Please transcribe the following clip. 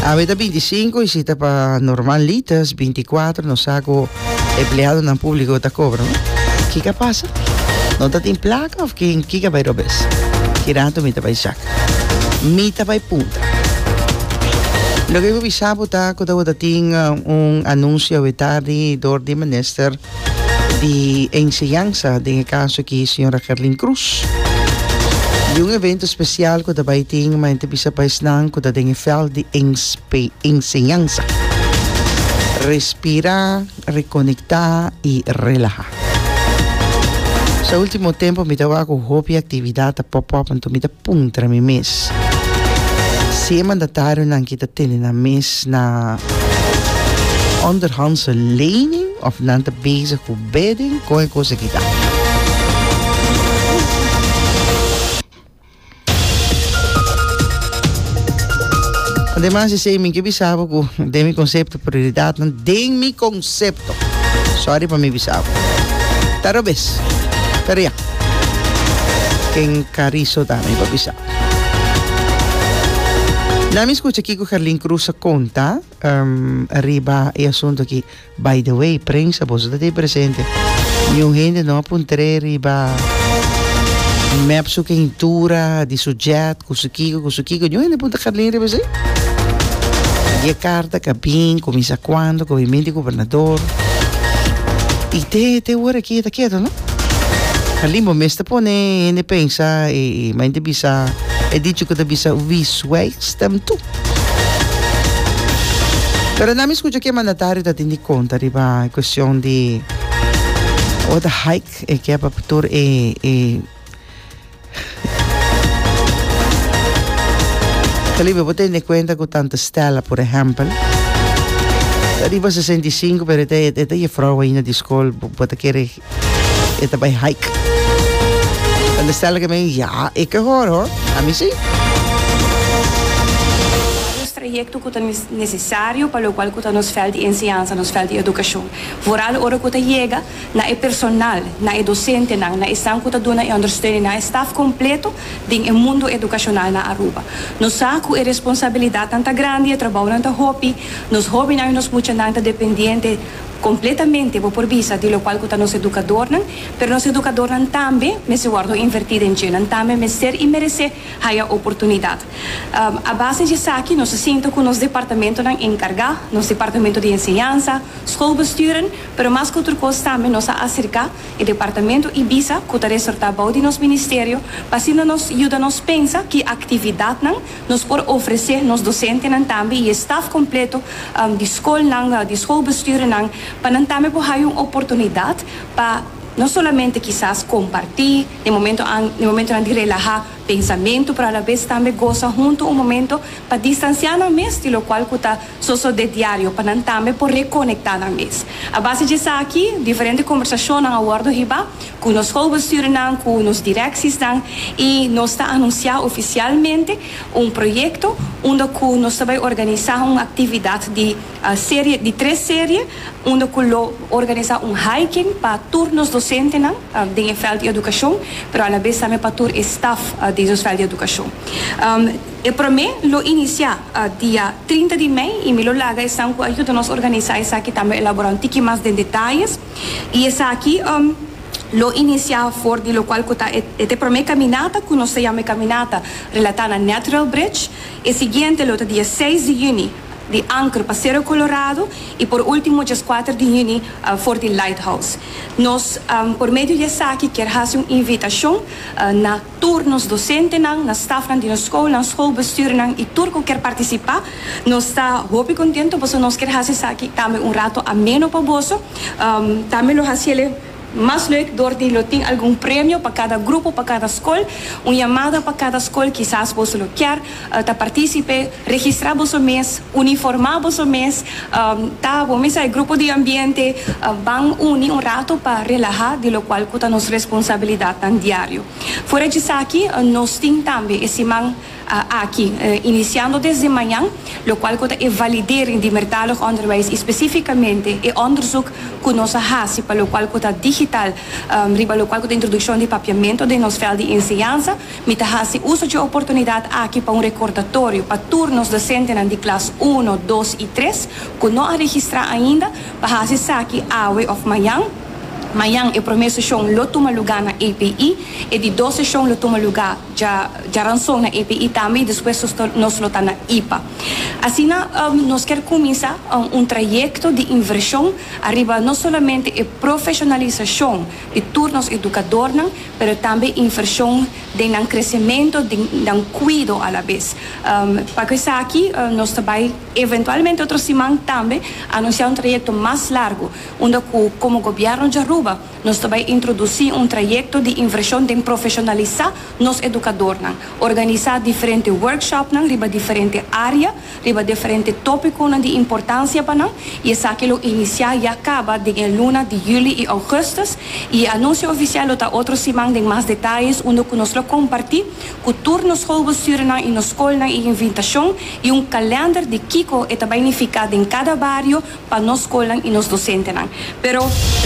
Awe ta 25 y si ta pa normal litas 24 no sa cu empleado nan publico ta cobra no. Kika pasa? No ta tin placa of kin kika bay robes? Ki rato mi ta bay zak. Mi ta bay punta. Loke cu bisa bo ta cu ta bo ta tin un anuncio awe tardi door di minister di enseñansa den e kaso aki señora Gerlin Croes di un evento spesial ku ta bai tin ma enta bisa pa esnan ku ta den e veld di enseñansa respira rekonekta i relaha so ultimo tempo mi ta wak ku hopi aktividat ta pop up anto mi ta Puntra mi mes. Si e mandatarionan ki ta tene nan mes na onderhandse lening òf nan ta bezig ku bidding, kon e kos aki ta? Ademas di esei mi ke bisa bo ku den mi konsepto. Prioridadnan den mi konsepto. Sòri pa mi bisa abo. Ta robes, pero ya. Ken Kariso ta mi pa bisa? Na mi skucha kiko Herlin Cruz a konta riba e asuntu aki. By the way, prensa, boso ta di presente. Niun hende no a puntr'é riba mèp su kentura di su jet. Cu su kico, cu su kico? Djon hende punta Carlin riba esey? Y e carta ka bin, cuminsa cuando, cu a bin bin di gobernador. Y te, te hora aki e ta keto, no? Carlin, bo mes ta pone hende pensa e, e mai ta bisa e dicho cu ta bisa, Wie zwijgt stemt toe. Pero nan mi scucha cu e mandatario ta tin di conta riba e cuestion di, o ta hike e kiba tur e, e. Felipe, bo tende kuenta ku tante Stella, por ehèmpel, ta riba sesenta i sinku pero e ta e ta jefrou ainda di skol, bo ta kere e ta bai hike? Tante Stella ke men, ya, e ke hòr hò, ami si. Nos trayekto ku ta nesesario pa lokual ku ta nos vèlt di enseñansa, nos vèlt di edukashon. Vooral ora ku ta yega na e personal, na e dosentenan, na esnan ku ta duna e ondersteuning, na e staf kompleto den e mundu edukashonal na Aruba. Nos sa ku e responsabilidatnan ta grandi, e trabounan ta hopi, nos hóbennan i nos muchanan ta dependiente kompletamente, bo por bisa, di lokual ku ta nos edukadornan, pero nos edukadornan tambe mester wòrdu invertí den dje, nan tambe mester i meresé haya oportunidat. A base di esaki nos a sinta ku nos departamentonan enkargá, nos departamento di enseñansa, skolbesturen, Pero mas ku tur kos tambe nos a aserká e departamentu Ibiza ku ta resortá bou di nos ministerio pa asina nos yuda nos pensa ki aktividatnan nos por ofresé nos dosentenan tambe i e staf kompleto di skolnan di skolbestuurnan pa nan tambe por haya un oportunidat pa no solamente kisas kompartí den momentu an den momentunan di relahá pensamentu pero alabes tambe gosa huntu un momento pa distansiá nan mes di lokual ku ta sosodé diario pa nan tambe por rekonektá nan mes. A base di esaki, diferente kombersashonnan a wòrdu hibá ku nos schoolbestuurnan, ku nos direksisnan i nos ta anunsiá ofisialmente un proyekto unda ku nos ta bai organisá un aktividat di serie di tres serie unda ku lo organisá un hiking pa tur nos dosentenan den e vèlt di edukashon pero alabes tambe pa tur e staf di nos vèlt di edukashon. E promé lo inisiá dia trinta di mei i mi lo laga esnan ku a yuda nos organisá esaki tambe elaborá un tiki mas den detayes i esaki lo inisiá for di lokual ku ta e te promé kaminata ku nos ta yama e kaminata relatá na Natural Bridge. E siguiente lo ta dia seis di yüni di Anker pa Sero Kolorado i por último djes kuater di yüni for di Lighthouse. Nos por medio di esaki kier hasi un invitashon na. Tur nos dosentenan, na stafnan di nos skolnan, skolbestuurnan i tur ku ker partisipá, nos ta hopi kontentu pasobra nos kier hasi esaki tambe un ratu ameno pa boso. Tambe lo hasi el e mas leuk dor di lo tin algun premio pa kada grupo, pa kada skol, un yamada pa kada skol, kisas boso lo kier. ta participe, registra boso mes, uniforma boso mes, ta bo mesa e grupo di ambiente ban uni un rato pa relaha di locual cu ta nos responsabilidadnan diario. Fuera d'esaki nos tin tambe e siman aki, iniciando desde mañan, locual cu ta e validering di mertalig onderwijs y specificamente e onderzoek cu nos a haci pa locual cu ta digital riba locual cu ta introduccion di papiamento den nos veld di enseñansa, Mi ta hasi uso dje oportunidat aki pa un rekordatorio pa tur nos dosentenan di klas uno, dos i tres ku no a registrá ainda pa hasi esaki awe òf mañan. Mañan e promé seshon lo tuma lugá na API. E di dos seshon lo tuma lugá dja djaranson na API tambe i despues nos ta nos lo ta na IPA. Asina nos kier kuminsá un trayekto di invershon ariba no solamente e profeshonalisashon, di tur nos edukadornan, pero tambe invershon den nan kresementu, den nan kuido alabes. Pa ku esaki nos ta bai eventualmente otro siman tambe anunsiá un trayekto mas largu, unda ku komo Gobièrnu di Aruba nos ta bai introdusí un trayekto di invershon den profeshonalisá nos edukadornan, organisá diferente workshopnan riba diferente área, riba diferente tópikonan di importansia pa nan i esaki lo inisiá i a kaba den e luna di Juli i Ougùstus i e anunsio ofisial lo ta otro siman den mas detayes unda ku nos lo kompartí ku tur nos skolbestuurnan i nos skolnan e invitashon i un kalènder di kiko e ta bai nifiká den kada bario pa nos skolnan i nos dosentenan pero.